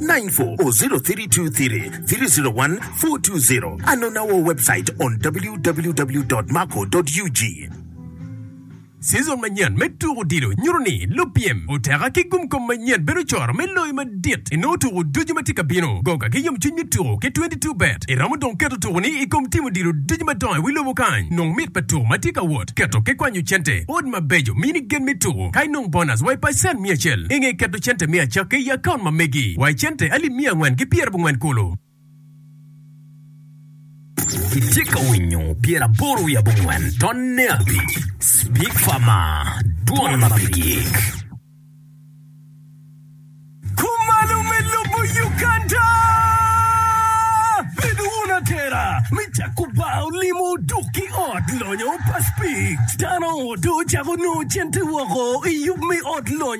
94032303014220 Anonn our website on www.marco.ug. Season manyen me tuko odilo nyuto ni lupyem oteka ki gumkom manyen bedo coro me loyo madit inongo tuko ducu ma tye ka bino. Goga ki yomcwiny me tuko ki twenty two bet iromo dong keto tukoni i kom tim odilo ducu madongo i wi lobo kany. Nong mit pa tuko ma tye ka wot, keto ki kwanyo cente, odd mabeco, mini gen me tuko, ka inong bonus wa i pacen mia acel. I nge keto i cente miya cakke i akaunt ma megi wa i cente alip miya angwen ki pyera bongwen kulu. Itye ka winyo pyera aboro wiye abongwen tonne abic Speak Farma dwon ma pe gik. Kumalo me lobo Uganda! Bedo wun atera me cako bar olimo dok ki ot lonyo pa Speak. Dano oto cako nongo cente woko i yub me ot lonyo.